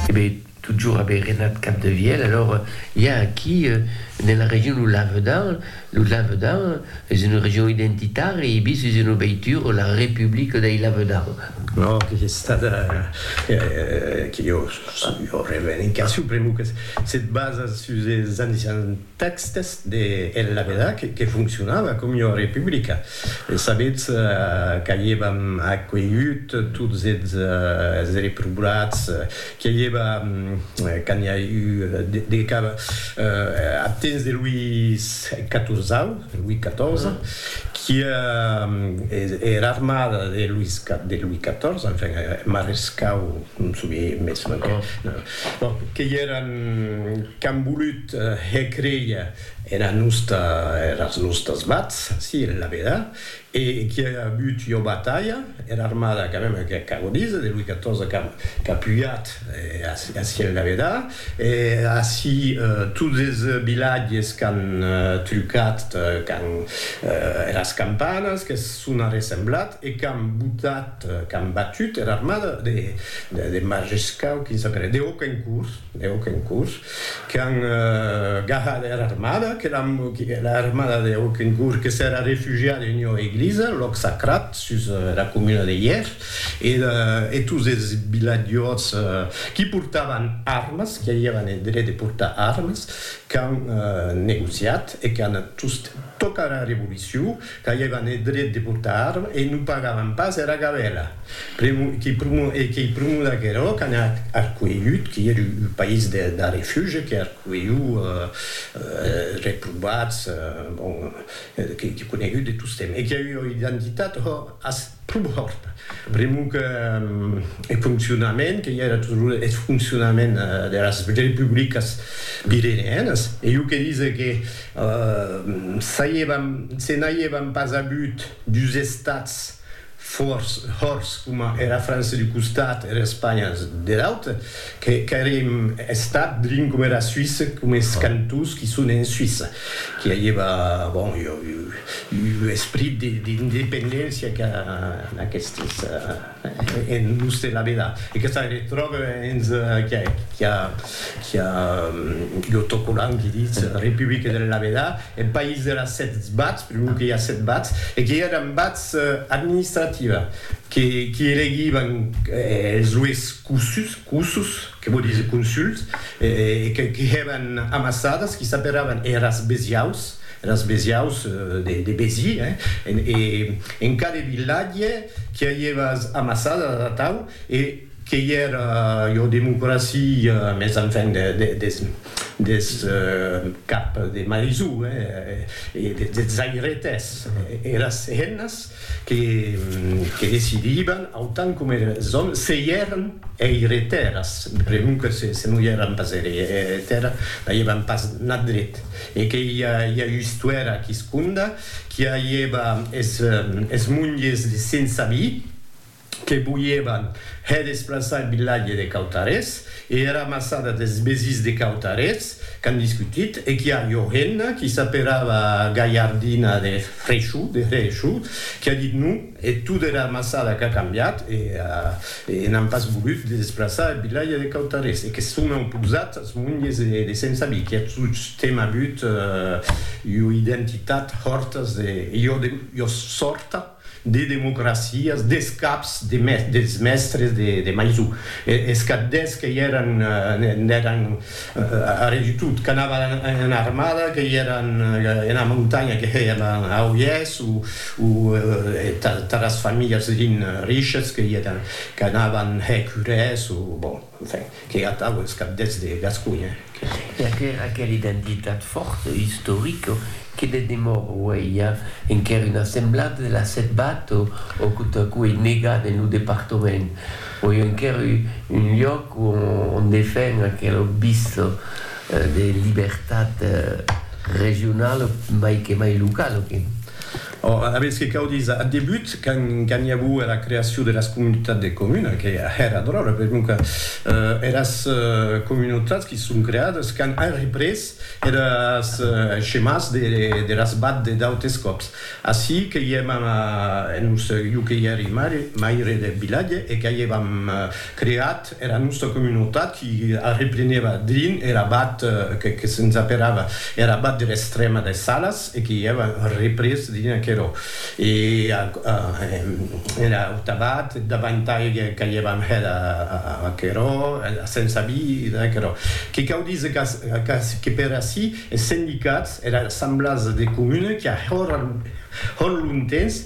Ebe, totjorn aver renat Capdevièlh, alòra i a aquí, nela region lo Lavedan, lo Lavedan es una region identitària e bis es una veitura, la Republica dei Lavedan. Ò, que es estat a, que jo, jo revenc a supremo que se basa sus es anni 70. Tèxtes de El Labedà que foncionava com ua republica. Sabetz qu'a'i èva acuelhut tots es reprobats, qu'a'i èva quand i a eu de cap ath temps de Luís Catorzau, Louis XIV, qu'ia era armada de Luís XIV, enfin eth marescau, non sovie mès, bon, qu'ei eran qu'an volut Hè creia era nosta, eras nostas bats, si, en la veda, e qui a avut ua batalha, era armada quand même que ac agonise, de Louis XIV qu'a qu'a pujat ací en la veda, e ací tots es vilatges qu'an trucat quand eras campanas que s'on arressemblat e qu'an botat, qu'an batut era armada de de Majescau, quin s'apelèt, de Hauquencourt. e Auquencourt, qu'an gahat era armada, que era armada de Auquencourt que s'èra refugiada en ua eglisa, lòc sacrat, sus era comuna de Hièr, e tots es vilatjors qui portavan armas, qui avián eth dret de portar armas, qu'an negociat e qu'an tocat era revolucion, Qu'aviavan eth dret de portar arma e non pagavan pas era gabèla. Pr'amor que pr'amor e qu'ei pr'amor d'aquerò qu'an arcuelhut, que ei un país de de refuge, que arcuelhu es reprovats, bon, que ei conegut de tostemp e que ei ua identitat, hò, as. Prumòrt, pr'amor que eth foncionament, que i era toujours eth foncionament deras republicas virerianas, e jo que dise que se n'aiévan pas avut dus estats fòrts, hòrts, coma era França d'un costat e era Espanha der aute, qu'auriem estat drin coma era Suisse, coma es cantons qui son en Suisse, qui aiéva, bon, jo, Lo esprit d'independéncia qu'a aquestes en l'us de la vela e que se retròbe hens qui a l'autocollant qui ditz Republique de la vela e País de las sèt bats, per lo que i a sèt bats e que èran bats administrativa qui elegivan es lues cossus, Que vò díser consult, e que hèban amassadas, qui s'aperavan eras besiaus, eras besiaus de Béziers, hein, e en cada vilatge qui a ievas amassadas atau, e que i era ua democracia, mès enfin des cap de marisú, hein, e des zairetes, eras hennas que decidiban, autant coma es òmes, se i èran eire tèrras, pregun que se non i èran pas eire tèrra, n'aievan pas nat dret, e que i a ua istuèra quisconda qui aieva es monges sensa vi, que voièvan hè desplaçar eth vilatge de Cautarés e era massada des Besís de Cautarés qu'an discutit e qu'i a ua hemna qui s'aperava Galhardina de Freixo, de Hrecho, qui a dit non e tot era massada qu'a cambiat e e n'an pas volut de desplaçar eth vilatge de Cautarés e que son auposat as monges de Sent Sabí qui a tostemp avut ua identitat hòrtas de ua sòrta. de democracias, des caps dels mèstres de Maisó, es capdèths que i èran, n'èran arrè du tot, qu'anavan ena armada, que i èran ena montanha, que i èran a Oièrs o taras familhas rin riches, que i èran, qu'anavan hèr curès o bon. Enfin, que atau es cabdèths de Gasconha, que. E aquera aquera identitat fòrta, istorica, que ne demòra uèi a enquèr una semblada de la Setbat o o quo ta quo ei negada en lo departament. O ei enquèr u un lloc o on defen aquela obvista de libertat regionala, mai que mai locala, que. Or, aguest que cau díser, ath debut, quand n'i auo era creacion deras comunitats de comuna, que era dròlla, perquonque eras comunautats qui son creades qu'an arreprés eres schemas deras bad de d'autes còps. Ací que i èm en un sèu, jo que i èri maire deth vilatge e qu'aievam creat Era nòsta comunotat i arreplenèva drin er abat que que se'ns aperava er abat der Estrèma des Salas e que i èva représ drin aquerò. E a a er aut abat davantai qu'aievam hèt a aquerò, a sensa vida e aquerò. Que cau díser qu'a qu'a que per ací es sendicats, era assemblàs de comuna qu'i a hòr hòr lontens,